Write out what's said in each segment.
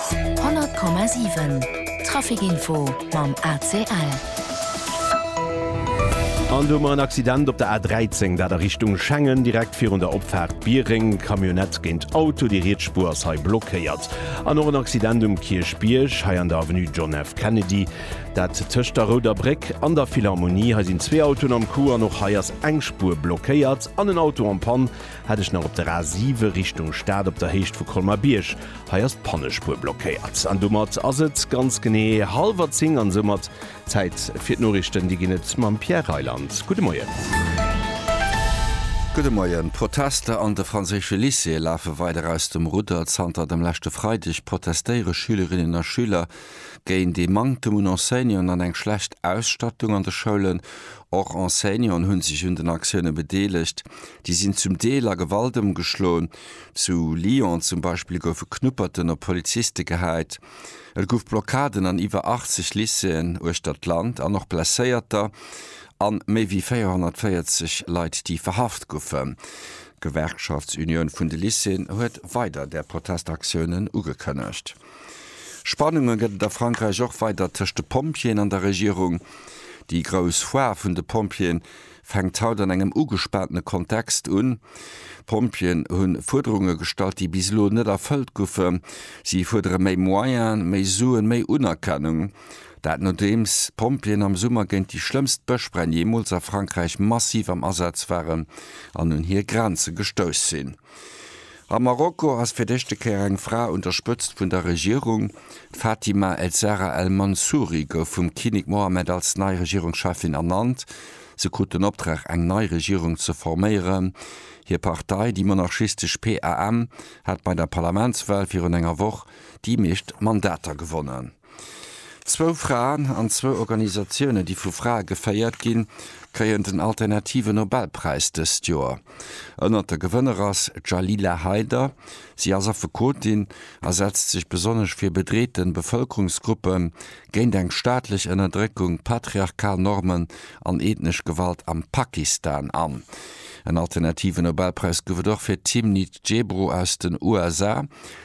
100,7 Trafic Info mam ACL. An do hu mer en Accident op der A13, dat a Richtung Schengen, direkt virun der Opfaart Biereng. Camionnette géint Auto, déi riets Spuer ass hei blockéiert. An och en Accident um Kierchbierg, hei an der Avenue John F. Kennedy, dat tëscht der Rouder Bréck an der Philharmonie. Hei sinn zwee Autoen am Coup an och hei ass eng Spuer blockéiert an en Auto en Panne. Hat ech nach op der A 7 Richtung Stad op der Héicht vu Colmer Bierg. Hei ass d'Pannespuer blockéiert an domat ass et ganz genee hallwer 10 an soumat Zäit fir d'Noriichten. Déi ginn et mam Pierre Reyland. Gudde Moien. Gudde Moien. D'Protester an de franséische Lycéeë lafe weider aus dem Rudder. Zanter dem leschte Freideg protestéiere Schülerinnen a Schüler géint ee Manktem un Enseignanten an eng schlecht Ausstattung an de Schoulen. Och Enseignanten hu sech un den Aktioune bedeelegt. Déi sinn zum Deel a Gewalt ëmgeschloen. Zu Lyon zum Beispill goufe Knupperten op Poliziste gehäit. Et gouf Blockaden an iwwer 80 Lycéeën uechter d'Land an och Blesséierter a méi wéi 440 Leit, déi verhaft goufen. D'Gewerkschaftsunioun vun de Lycéeën huet weider där Protestaktiounen ugekënnegt. Spannunge gëtt et a Frankräich och weider tëscht de Pompjeeën an der Regierung. Déi grouss Foire vun de Pompjeeën fänkt haut an engem ugespaantene Kontext un. D'Pompjeeën hu Fuerderunge gestallt, déi bis elo net erfëllt goufe. Si fuerdere méi Moyene, méi Suen, méi Unerkennung. Dat nodeems d'Pompjeeën am Summer géint déi schlëmmst Bëschbränn jeemools a Frankräich massiv am Asaz waren an un hir Grenze gestouss sinn. A Marokko ass fir d'éischte Kéier eng Fra un der Spëtzt vun der Regierung. D'Fatima El Zahra El Mansouri gouf vum Kinnek Mohammed als nei Regierungscheffin ernannt. Se krut den Optrag, eng nei Regierung ze forméieren. Hir Partei, déi monarchistesch PAM, hat bei der Parlamentswal virun enger Woch déi meescht Mandater gewonnen. Zwou Fraen an zwou Organisatioune, déi vu Frae geféiert ginn, kréien den alternative Nobelpräis dëst Joer. Ënnert de Gewënner ass d'Jalila Haider. Si ass Affekotin a setzt sech besonnesch fir bedreete Bevëlkerungsgruppen, géint eng staatlech Ënnerdréckung, patriarchal Normen an ethnesch Gewalt am Pakistan an. En alternative Nobelpräis gouf et och fir d'Timnit Gebru aus den USA.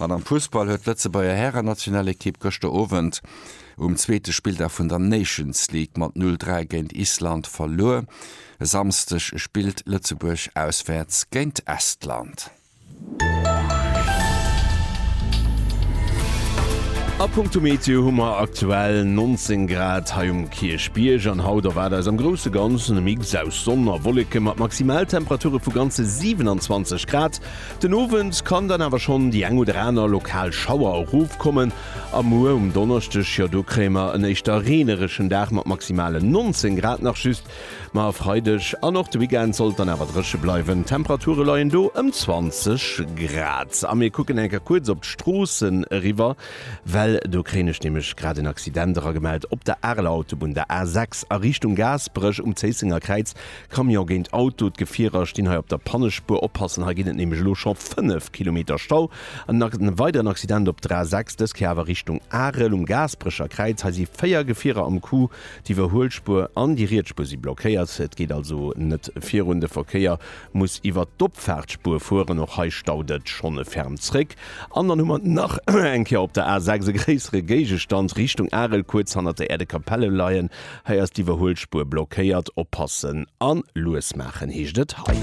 An am Fussball huet d'Lëtzebuerger Hären-Nationalekipp gëschter Owend um zweete Spilldag vun der Nations League mat 0, 3 géint Island verluer. E Samsdeg spillt Lëtzebuerg auswäerts géint Estland. A punkto Meteo hu mer aktuell 19 Grad hei um Kierchbierg an haut erwaart eis am grousse Ganzen e Mix aus Sonn a Wolleke mat Maximaltemperature vu ganze 27 Grad. Den Owend kann dann awer schonn déi eng oder aner lokal Schauer erofkommen a muer um Donneschdeg, jo do kréie mer en éischter reenereschen Dag mat maximalen 19 Grad nach just. Ma e Freideg an och de Weekend sollt dann awer dréche bleiwen, d'Temperature leien do ëm 20 Grad. A mir kucken eng Kéier kuerz op d'Stroossen eriwwer, well do kréien ech nämlech grad en Accident eragemellt op der Areler Autobunn, der A6 a Richtung Gaasperech. Um Zéissenger Kräiz Camion géint Auto, d'Gefierer stinn hei op der Pannespuer, oppassen, hei ginn et nämlech elo scho 5 Kilometer Stau. En weideren Accident op der A6, dës Kéier awer Richtung Arel um Gaasperecher Kräiz, hei si 4 Gefierer am Coup, d'Iwwerhuelspuer an déi riets Spuer si blockéiert, et geet also net virun, de Verkéier muss iwwert d'Opfaartspuer fueren, och hei staut et schonn e ferm zréck. An dann hu mer nach eng Kéier op der A6 e gréissere Géigestand Richtung Arel, kuerz hannert der Äerdekapelle leien Hei ass d'Iwwerhuelspuer blockéiert, oppassen an lues maachen heescht et hei.